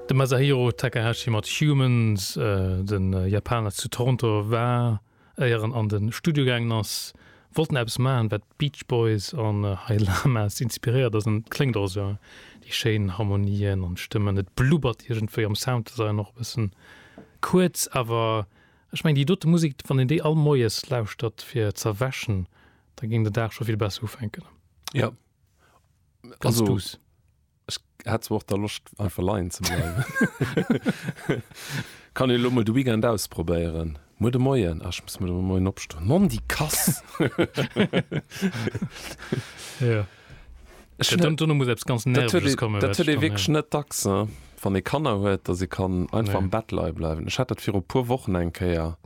De Masahiro Takahashi mat Humans, de Japaner zu Toronto war, éier en an de Studio gaangen ass, wollt en eppes maachen, wat d'Beach Boys an High Llamas inspiréiert ass. Et kléngt och esou, déi schéin Harmonien an Stëmmen. Et blubbert iergendwéi am Sounddesign och e bëssen. Kuerz, awer ech mengen, déi dote Musek, wann een déi all moies lauschtert fir z'erwächen, da géing den Dag scho vill besser ufänken. Jo, Ganz also, duus. Ech hat zwar och der Loscht einfach leien ze bleiwen. Kann e lo mol de Weekend ausprobéieren. Muer de Moien ach, muss mir moien opstoen. Mann déi Kass! ja. Ech hun dann dunne muss eppes ganz nervös kommen. Dat huet e wékch net dacks wann e Kanner huet, datt e kann einfach ja. am Bett lei bleiwen. Ech hat dat viru puer Wochen eng Kéier.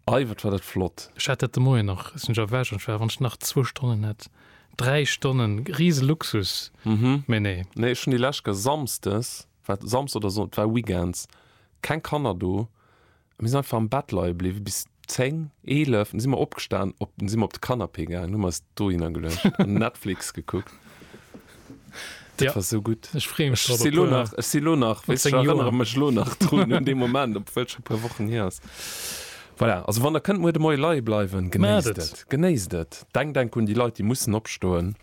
Ei, wat war dat flott! Ech hat dat de Moien nach, sinn ech erwächt an ech war, wann ech nach zwou Stonnen hätt, dräi Stonnen, riese Luxus, mee nee. Nee, ech hunn déi lescht Kéier Samsdes, war et Samsdes oder Sonn-, et war Weekends, keng Kanner do, a mir sinn einfach am Bett leie bliwwen bis zéng, eelef, du si mer opgestan, op, du si mer op de Canapé gaangen, hu mer eis dohinner geluecht an Netflix gekuckt. Dat war sou gutt. Ech freeë mech drop. Ech si lo nach, ech si lo nach, weess, ech erënnere mech lo nach drun un dee Moment, obwuel et scho e puer Wochen hier ass. Voilà, also wann der kënnt muer de Moie leie bleiwen, genéisst et, genéisst et. Denkt, denkt un déi Leit, déi mussen opstoen.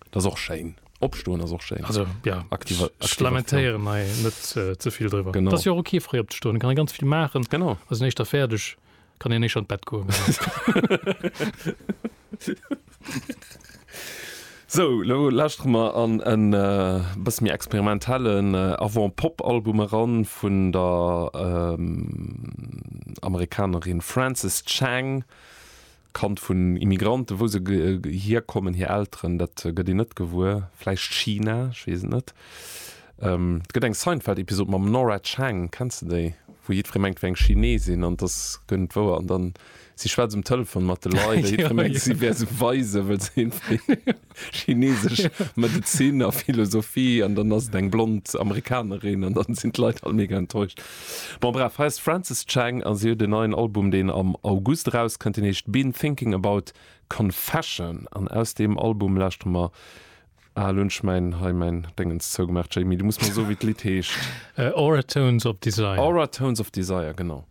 Dat ass och schéin. Opstoen ass och schéin. Also, jo, Aktiva, ech aktiva, lamentéieren hei net ze vill driwwer. Genau. Et ass jo och ok, fréi opzestoen, et kann ee ganz vill maachen. Genau. Ass een éischter fäerdeg. kann een éischt an d'Bett goen. So, lo lauschtere mer an en bësse méi experimentellen Avant-Pop-Album eran vun der Amerikanerin Frances Chang. Kand vun Immigranten, wou se hierkommen, hir Elteren, dat gëtt een net gewuer. Vläicht China, ech weess et net. Et gëtt eng Seinfeld-Episod mam Nora Chang, kenns de déi? Wou jiddweree mengt, et wär eng Chinesin an et ass guer net wouer an dann si schwätzt um Telefon mat de Leit a jiddweree mengt, si wär sou weise wëll se hinnflitt. Chinesesch Medezin a Philosophie an dann ass et eng blond Amerikanerin an dann sinn d'Leit all mega enttäuscht. Bon bref, hei ass d'Frances Chang a si huet en neien Album deen am August erauskënnt, deen heescht Been Thinking About Confession an aus deem Album lauschtere mer, ah elo hunn ech mäin hei mäin Déngens zougemaach Jamie, du muss mer soe wéi d'Lidd heescht. Aura Tones of Desire. Aura Tones of Desire, genau.